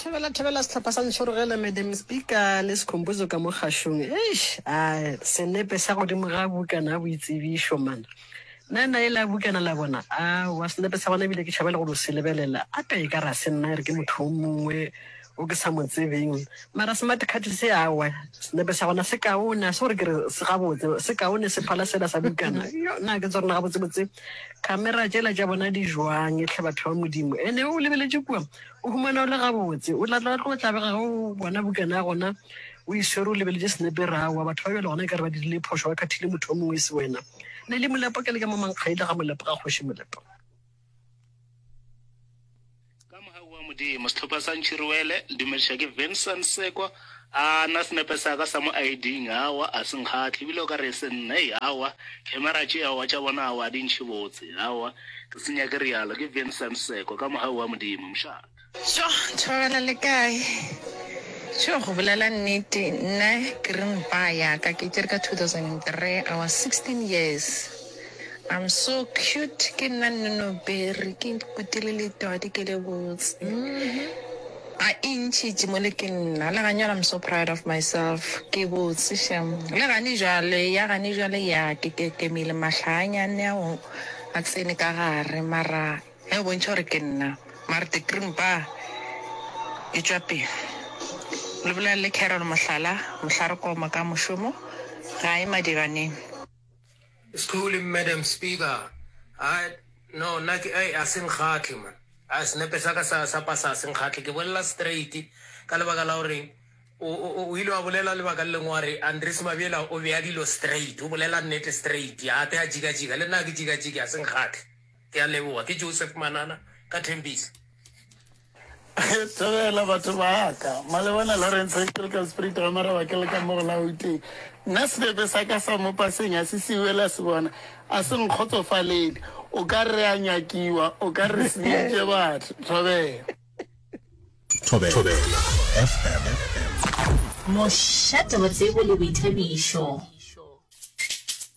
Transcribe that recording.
thebela thebela sehlopha sa ntšhorogele madam speaker le sekhompozo ka mo kgašong eish a senepe sa godimo ga bukana ya boitsebišo mana nna na e la bukana la bona a wa senepe sa gona ebile ke tšhabele go lo se lebelela a ka e ka ra se nna e re ke motho o mongwe o ke sa mo tsebeng mara smart card se awa senepe sa gona se kaone a se gore ke re se gabotse se kaone se phala sela sa bukana yo nna ke tsa rona gabotsebotse Kamera tšela tša bona di jwang, ehlwa batho ba Modimo! E ne o lebeletše kua, o humana o le gabotse. O tla tla tlo tlabega ge o bona bukana ya gona o e swere o lebeletše senepe ra wa. Batho ba bjalo gona e ka re ba dirile phošo, ba khathile motho yo mongwe e se wena. Ne e le Molepo, ke le ka mo Mankgaile ga Molepo, ga Kgoši Molepo. Ka mogau wa Modimo, sehlopha sa Ntšhiruele, le dumediša ke Vincent Sekwa. A na senepe sa ka sa mo ID-ing, awa, a se nkgahle, ebile o ka re e se nna, hei, awa, kgemera tše, awa, tša bona, awa, di ntšhe botse, awa, ke se nyake rialo. Ke Vincent Sekwa, ka mogau wa Modimo, mošate. Tjo, thobela le kae? Tjo, go bolela nnete, nna ke ring ba ya ka ke tšere ka 2003, I was 16 years. I'm so cute ke nna Nnonoberi ke kutile le twadi ke le botse mm-hmm. a e ntšhitše mo le ke nna le ganyana I'm so proud of myself ke botse shem le gane jale ya gane jale ya ke ke ke mile mahlanyane a o a tsene ka gare mara e bontšha gore ke nna mara the cream ba e tšwa pele le bolelele carol mohlala mohlare koma ka mošomo ga e madiganeng School madam speaker I no nna ke ai a seng kgatle man a senepe sa ka sa sa pasa a seng kgatle ke bolela straight ka lebaka la gore o ile wa bolela lebaka le lengwe wa re andres mabjela o bea dilo straight o bolela nnete straight a te a jika jika le nna ke jika jika a seng kgatle Ke a leboga. Ke Joseph Manana ka Tembisa. Thobela batho ba ka. Malebana Lawrence Historical Spirit ga Maraba ke le ka mo go la Gauteng. Nna sebepe sa ka sa mo paseng a se siwe la se bona. A se nkgotsofalele. O ka re a nyakiwa, o ka re senyeditše batho. Thobela. Thobela FM. Mošate wa tsebo le boithabišo.